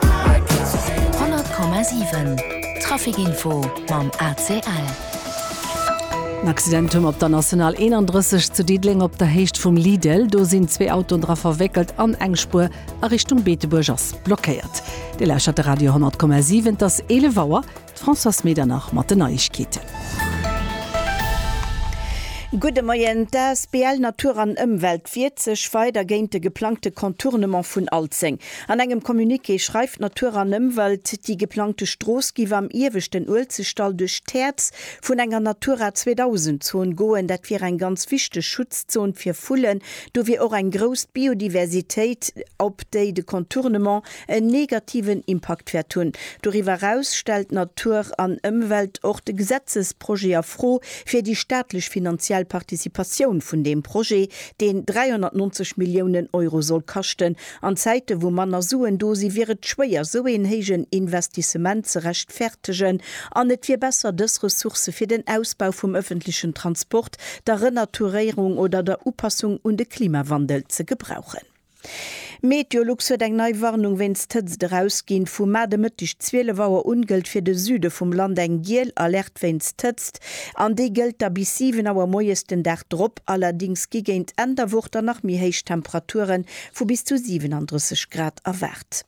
100,7 Trafic Info mam ACL. En Accident hunn op der National 31 zu Diddeleng op der Héicht vum Lidl. Do sinn zwee Autoen dra verwéckelt an eng Spuer a Richtung Beetebuerg ass blockéiert. Dir lauschtert de Radio 10,7. Et ass 11 Auer. D'Françoise Medernach mat den Neiegkeeten. Gudde Moien. D'asbl Natur an Ëmwelt wiert sech weider géint de geplangte Contournement vun Alzeng. An engem Communiqué schreift Natur an Ëmwelt, déi geplangte Strooss géif am ieweschten Uelzechtdall duerch d'Häerz vun enger Natura 2000 Zon goen. Dat wier eng ganz wichteg Schutzzon fir Vullen. Do wier och eng grouss Biodiversitéit, op déi de Contournement en negativen Impakt wäert hunn. Doriwwer eraus stellt Natur an Ëmwelt och de Gesetzesprojet a Fro fir déi staatlech finanziell Participatioun vun deem Projet, deen 390 Milliounen Euro soll kaschten An Zäite wou manner Suen do si wier et schwéier sou een héijen Investissement ze rechtfertegen an et wier besser dës Ressourcë fir den Ausbau vum ëffentlechen Transport, der Renaturéierung oder der Upassung un de Klimawandel ze gebrauchen. Meteolux huet eng nei Warnung wéinst Hëtzt erausginn. Vum Mar de Mëtteg 12 Auer un gëllt fir de Süde vum Land eng giel Alerte. wéinst Hëtzt, an déi gëllt da bis 7 Auer moies den Dag drop. Allerdings gi géint Enn der Woch dann nach méi héich Temperature vu bis zu 37 Grad erwaart.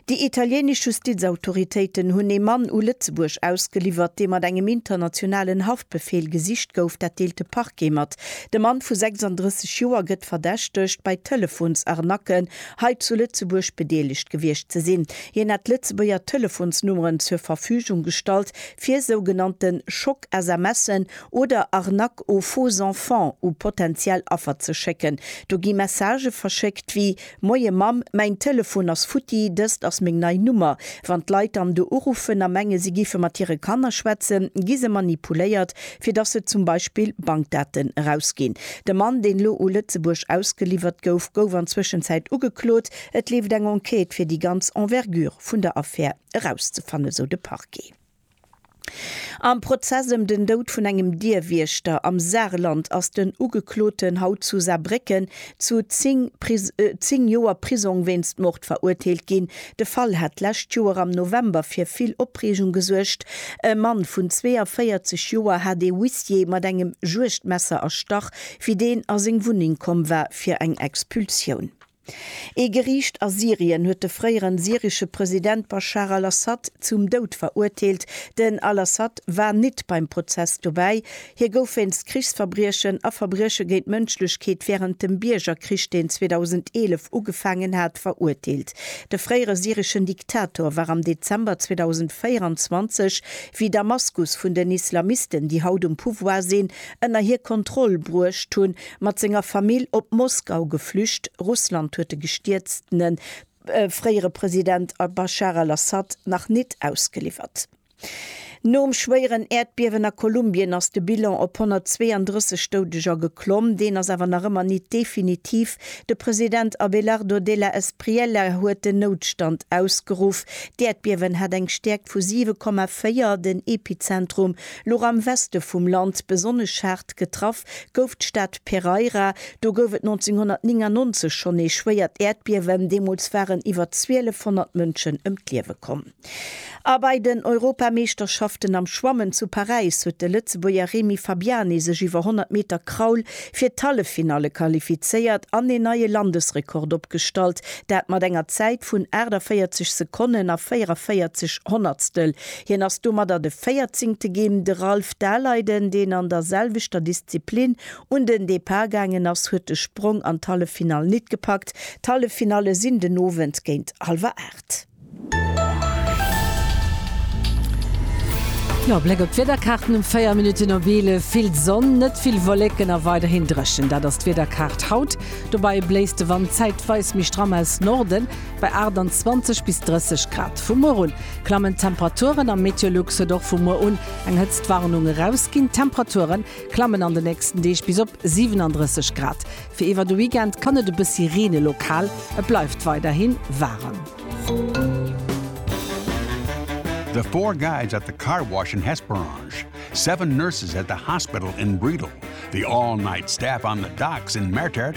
Déi italienesch Justizautoritéiten hunn ee Mann u Lëtzebuerg ausgeliwwert, dee mat engem internationalen Haftbefeel gesicht gouf. Dat deelt de Parquet mat. De Mann vu 36 Joer gëtt verdächtegt, bei Telefonsarnacken hei zu Lëtzebuerg bedeelegt gewiescht ze sinn. Hien hätt Lëtzebuerger Telefonsnummeren zur Verfügung gestallt, fir sougenannte Schock-SMSen oder Arnaques aux faux enfants u potentiell Affer ze schécken. Do gi Messagë verschéckt wéi, Moie Mamm, mäin Telefon ass futti, dëst ass meng nei Nummer. Wann d'Leit dann do uruffen a menge si géife mat hire Kanner schwätzen, gi se manipuléiert, fir dass se zum Beispill Bankdaten erausginn. De Mann, deen elo u Lëtzebuerg ausgeliwwert gouf, gouf an Zwëschenzäit ugeklot. Et leeft eng Enquête fir déi ganz Envergure vun der Affär. erauszefannen, sou de Parquet. Am Prozess ëm den Doud vun engem Dierwiechter am Saarland ass den Ugekloten haut zu Saarbrécken zu 10 Joer Prisong wéinst Mord verurteelt ginn. De Fall hat d'lescht Joer am November fir vill Opreegung gesuergt. E Mann vun 42 Joer hat ee Huissier mat engem Juegdmesser erstach, wéi deen a seng Wunneng komm war fir eng Expulsioun. Ee Geriicht a Syrien huet de fréieren syrische President Baschar al-Assad zum Doud verurteelt. Den al-Assad war nit beim Prozess dobäi. Hie gouf wéinst Krichsverbriechen a Verbrieche géint d'Mënschlechkeet wärend dem Biergerkrich, deen 2011 ugefaangen hat, verurteelt. De fréiere syrischen Diktator war am Dezember 2024, wéi Damaskus vun den Islamisten, déi haut um Pouvoir sinn, ënner hir Kontroll bruecht hunn, Mat senger Famill op Moskau geflücht. Russland huet de gestierztene fréiere President al-Baschar al-Assad nach nit ausgeliwwert. Nom schwéieren Äerdbiewen a Kolumbien ass de Bilan op 132 Doudeger geklomm. Deen ass awer nach ëmmer nit definitiv. De President Abelardo de la Espriella huet den Noutstand ausgeruff. D'Äerdbiewen hat eng Stäerkt vu 7,4. Den Epizentrum louch am Weste vum Land. Besonnesch haart getraff. gouf d'Stad Pereira. Do gouf et 1999 schonn ee schwéiert Äerdbiewen, deemools waren iwwer 1200 Mënschen ëm d'Liewe komm. A bei den Europameeschterschaften am Schwammen zu Paräis huet de Lëtzebuerger Remy Fabiani sech iwwer 100 Meter Kraul fir d'Halleffinalle qualifizéiert an een neie Landesrekord opgestallt, dat mat enger Zäit vun 48 Sekonnen a 44 Honnertstel. Hien ass domadder de véierzéngte Gem. De Ralph Daleiden, deen an der selwechter Disziplin un den Depart gaangen ass, huet de Sprong an d'Halleffinall nit gepackt. D'Halleffinalle sinn den Owend géint hallwer aacht. Jo, Bléck op d'Wiederkaarten um 4 Minutten op 11, Vill Sonn, net vill Wolleken a weiderhin dréchen. Dat ass d'Wiederkaart haut. Dobäi bléist de Wand zäitweis méi stramm aus Norden. Bei 28 bis 30 Grad vu muer un klammen d'Temperaturen am Meteolux huet och vu muer un eng Hëtztwarnung erausginn. D'Temperature klammen an de nächsten Deeg bis op 37 Grad. Fir iwwer de Weekend kann et e bëssi reene lokal, et bleift weiderhi waarem. The four guys at the car wash in Hesperange, seven nurses at the hospital in Bredal, the all-night staff on the docks in Mertert,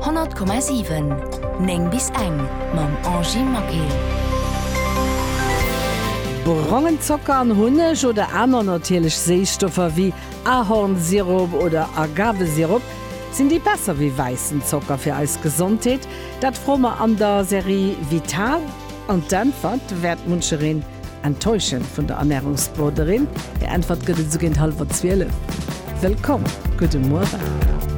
100,7 9 bis eng mam Angie Maquet. Brongen Zocker an Hunneg oder aner natierlech Séisstoffer wéi Ahornsirop oder Agavesirop, sinn déi besser wéi wäissen Zocker fir eis Gesondheet? Dat froe mer an der Serie Vital an d'Äntwert wäert munchereen enttäuschen. Vun der Ernärungsbroderin hir Äntwert gëtt et esou géint hallwer zwielef. Wëllkomm, gudde Muere.